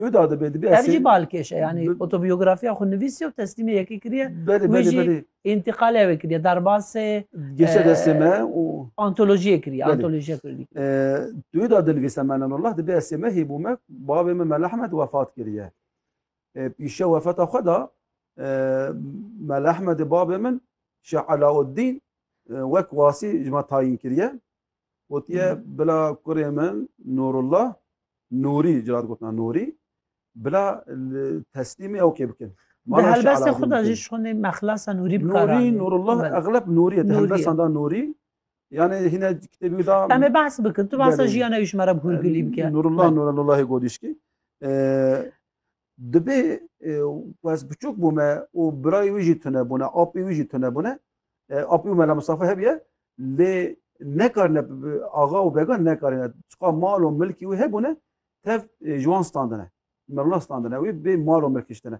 Huda dibe dibe Ev jî balkêş e yanî otobiyografiya xwe nivîsiye û teslîmê yekê kiriye. Belê belê belê. Întiqalê ew ê kiriye derbasê. Geşe destê me û. Antolojiyê kiriye antolojiya kurdî. Huda dinivîse me Nenullah dibe esê me hêbû me bavê me Melehmed wefat kiriye. Pîşe wefata xwe da Melehmedê bavê min Şeh Elauddîn wek wasî ji me tayîn kiriye. Gotiye bila kurê min Nurullah Nûrî cila digotina Nûrî bila teslîmê ew kê bikin. Di helbestê xwe de jî şonê me xilasa Nûrî bikar anîn. Nûrî Nurullah exleb Nûrî di helbestan da Nûrî Yani hine kitêbî da Em ê behs bikin. Tu behsa jiyana wî ji me re bi hûrgilî bike. Nurullah Nurellahê Godîşkî. Dibê ku ez biçûk bûme û birayê wî jî tunebûne, apê wî jî tunebûne. Apê û Mela Misafa hebiye lê nekarine axa û began nekarine. Çiqa mal û milkî wî hebûne tev ji wan standine. Mela standine wî bê mal û milkî şitine.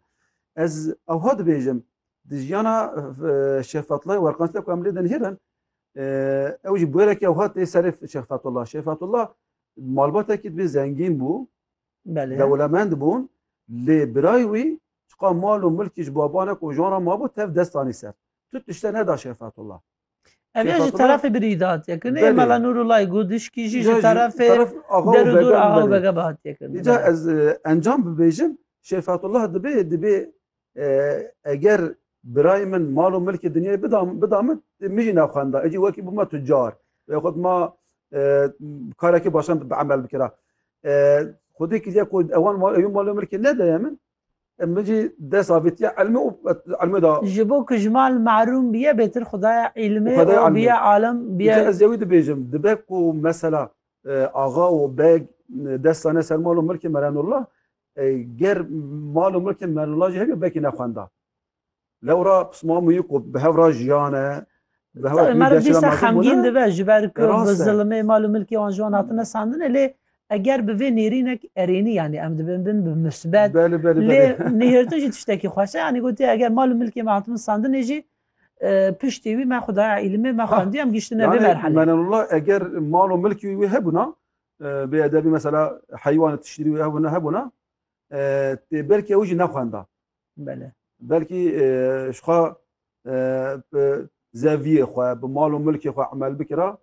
Ez ewha dibêjim di jiyana Şêx Fetullah werqansî de ku em lê dinihêrin ew jî bûyerekî ewha tê serê Şêx Fetullah. Şêx Fetullah malbatekî dibê zengîn bû Belê. Dewlemend bûn, lê birayê wî çiqa mal û milkî ji baban re kojan re mabû tev dest anî ser. Tu tişte neda Şefetullah. Ev yê ji terefê birîd hatiye kirin. Yê Mela Nûrullahê Gûdişkî jî ji terefê derûdûr axa û bege ve hatiye kirin. Îcar ez encam bibêjim, Şefetullah dibê, dibê Eger birayê min mal û milkê dinyayê bida min, min jî nexwenda. Ecî wekî bûma tucar. Wê xwe ma karekî başan bi emel bikira. Xwedê kiriye ku ewan ew mal û milkê nedeye min. Min jî dest avêtiye elmê û elmê da. Ji bo ku ji mal merûm biye bêtir xwedaya îlmê û biye alim biye. Ez ewî dibêjim dibe ku mesela axa û beg dest dane ser mal û milkê Merenullah Ger mal û milkên Merlûla jî hebe belkî nexwenda. Lewra pisma mûyî ku bi hev ra jiyane, bi hev ra Tabii meriv dîsa xemgîn dibe ji ber ku bi zilimê mal û milkê wan ji wan hatine sandine lê eger bi vê nêrînek erênî yanî em dibin bin bi misbet lê nihêrtin jî tiştekî xweş e yanî gotiye eger mal û milkê me hatibin sandinê jî piştî wî me xwe daya îlimê me xwendiye em gihiştine vê merhelê. Menenullah eger mal û milkî wî hebûna Bê edebî mesela heywanê tiştîrî wî hebûna hebûna tê belkî ew jî nexwenda. Bele. Belkî ji xwe bi zeviyê xwe bi mal û milkê xwe emel bikira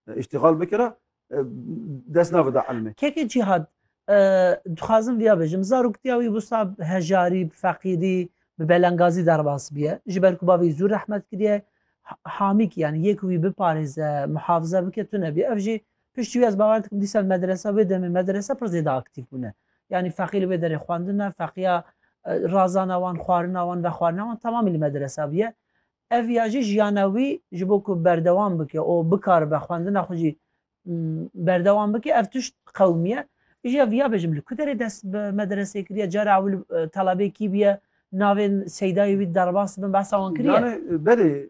îştîxal bikira dest navida elmê. Kekê Cîhad dixwazim viya bijim zaroktiya wî wisa bi hejarî bi feqîrî bi belengazî derbas biye ji ber ku bavê zû rehmet kiriye hamîk yani yê ku wî biparêze muhafize bike tune bî ev jî Piştî wî ez bawer dikim dîsal medrese wê demê medrese pir zêde aktîf bûne. Yanî feqî li wê derê xwendina, feqiya razana wan, xwarina wan, vexwarina wan temamî li medresa bûye. Ev ya jî jiyana wî ji bo ku berdewam bike û bikaribe xwendina xwe jî berdewam bike ev tişt qewimiye. Îjî ya viya bêjim li ku derê dest bi medresê kiriye, cara ewil telebê kî bûye, navên seydayê wî derbas bin behsa wan kiriye? Berê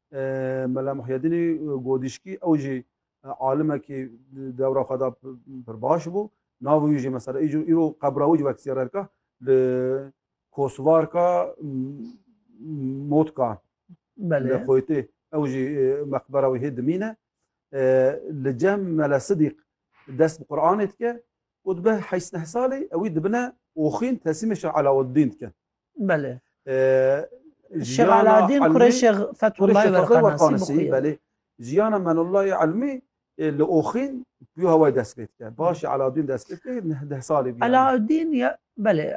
Mela Muhyedînî Godîşkî ew jî alimekî dewra xwe da pir baş bû. Navê wî jî mesela îro qebra wî jî wek sîyarerka li Kosvarka Motka li Xoytê ew jî meqbera wî hê dimîne. Li cem Mela Sidîq dest bi Quranê dike û dibe heşt neh salî ewî dibine oxîn tesîmê Şah Elawedîn dike. Belê. Şêx Alaaddin kurê Şêx Fethullah Werqanasî belê. Jiyana Menullah Elmî li Oxîn pî hawayê dest pê dike. Başî Alaaddin dest pê dike neh deh salê bî. Alaaddin ya belê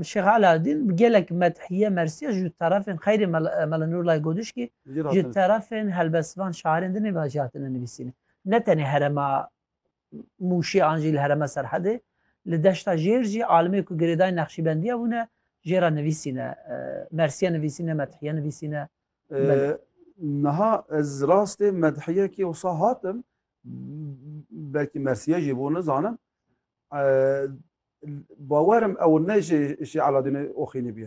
Şêx Alaaddin bi gelek medhiye mersiye ji terefên xeyrê Mela Nurullah Godişkî ji terefên helbestvan şairên din ê mela jî hatine nivîsîne. Ne tenê herema Mûşê an jî li herêma Serhedê, li deşta Jêr jî alimê ku girêdayî Neqşîbendiya bûne jêra nivîsîne, Mersîye nivîsîne, Medhîye nivîsîne. Niha ez rastê Medhîyekî wisa hatim, belkî Mersîye jî bû nizanim, bawerim ew ne jî Aladînê Oxînî bûye.